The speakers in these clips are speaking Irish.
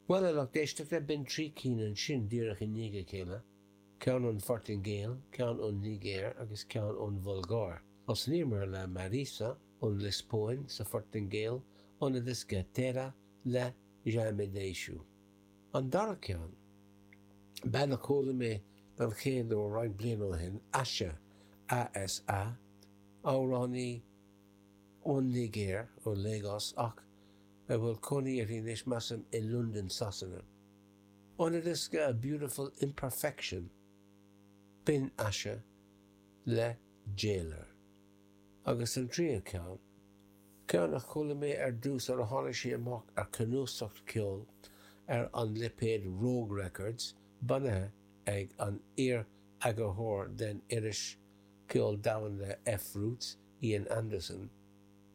Bhuel, a lucht éisteachta, b'in trí cinn ansin, díreach i ndiaidh a chéile, ceann ón Phortaingéil, ceann ón Nigéir agus ceann ón Bhulgáir. Thosnaíomar le Mariza ón Liospóin, sa Phortaingéil, óna diosca Terra, le Já Me Deixou. An dara ceann, bean a chuala mé don chéad uair roinnt bliana ó shin, Asa, A.S.A, amhránaí ón Nigéir, ó Lagos, ach, a bhfuil cónaí uirthi anois measaim i Londain Sasana. Óna diosca A Beautiful Imperfection, b'in Asa, le Jailer. Agus an tríú ceann, ceann a chuala mé ar dtús nuair a tháinig sí amach ar cnuasacht ceoil ar an lipéad Rogue Records, bunaithe ag an iar-eagarthóir den iris ceoil domhain le fRoots, Ian Anderson,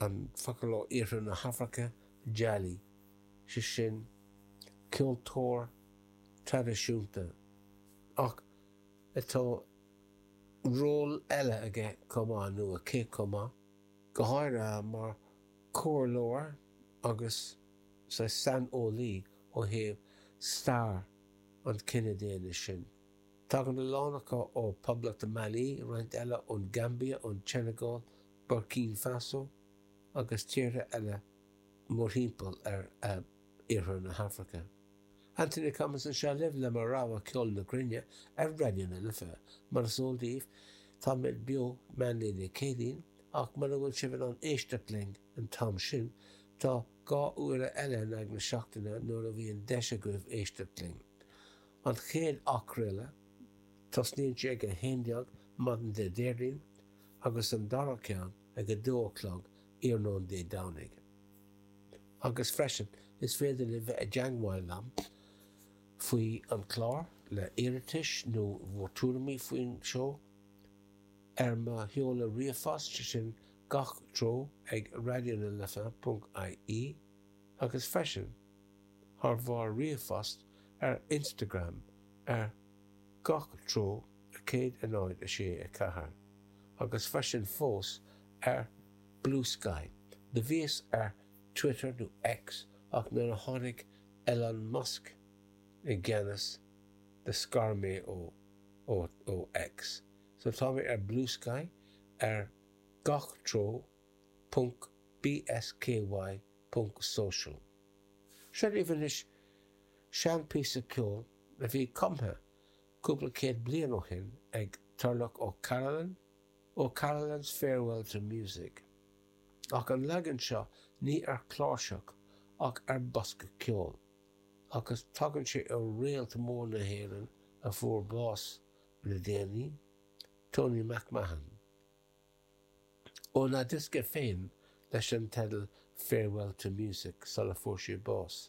an focal ó iarthar na hAfraice, jali, sé sin ceoltóir traidisiúnta, ach tá ról eile aige chomh maith, nó aici chomh maith, go háirithe mar chomhairleoir agus saghas saineolaí ó thaobh stair an chine daonna sin. Tagann a lán acu ó Poblacht Mali, roinnt eile ón Gambia, ón tSeineagáil, Burkina Faso agus tíortha eile mórthimpeall ar iarthar na hAfraice. Anthony Cummins anseo libh le mo rogha ceoil na gcruinne ar Raidió na Life. Mar is eol daoibh, táimid beo meánlae Dé Céadaoin, ach mura bhfuil sibh in ann éisteacht linn an t-am sin, tá dhá uaire eile in aghaidh na seachtaine nuair a bhíonn deis agaibh éisteacht linn. An chéad athchraoladh, tosnaíonn sé ag 11:00 maidin Dé Déardaoin, agus an dara ceann ag a dó a chlog iarnóin Dé Domhnaigh. Agus freisin, is féidir libh bheith i dteangmháil liom faoi an clár, le iarratais nó bhur tuairimí faoin seó, ar mo sheoladh ríomhphost, sé sin, gach treo ag raidionalife.ie, agus freisin, thar bharr ríomhphost, ar Instagram, ar gach treo. 106 4 Agus freisin fós ar Bluesky, do bhíos ar Twitter nó X ach nuair a tháinig Elon Musk i gceannas do scar mé ó ó ó X. So tá mé ar Bluesky ar gach treo ponc bsky ponc social. Seo libh anois sean píosa ceoil a bhí cumtha cúpla céad bliain ó shin ag Turlough O'Carolan, O'Carolan's Farewell to Music, ach an leagan seo ní ar chláirseach ach ar bhosca ceoil, agus tagann sé ó réalt mór na hÉireann a fuair bás le déanaí, Tony MacMahon. Óna dhiosca féin leis an teideal Farewell to Music sula fuair sé bás.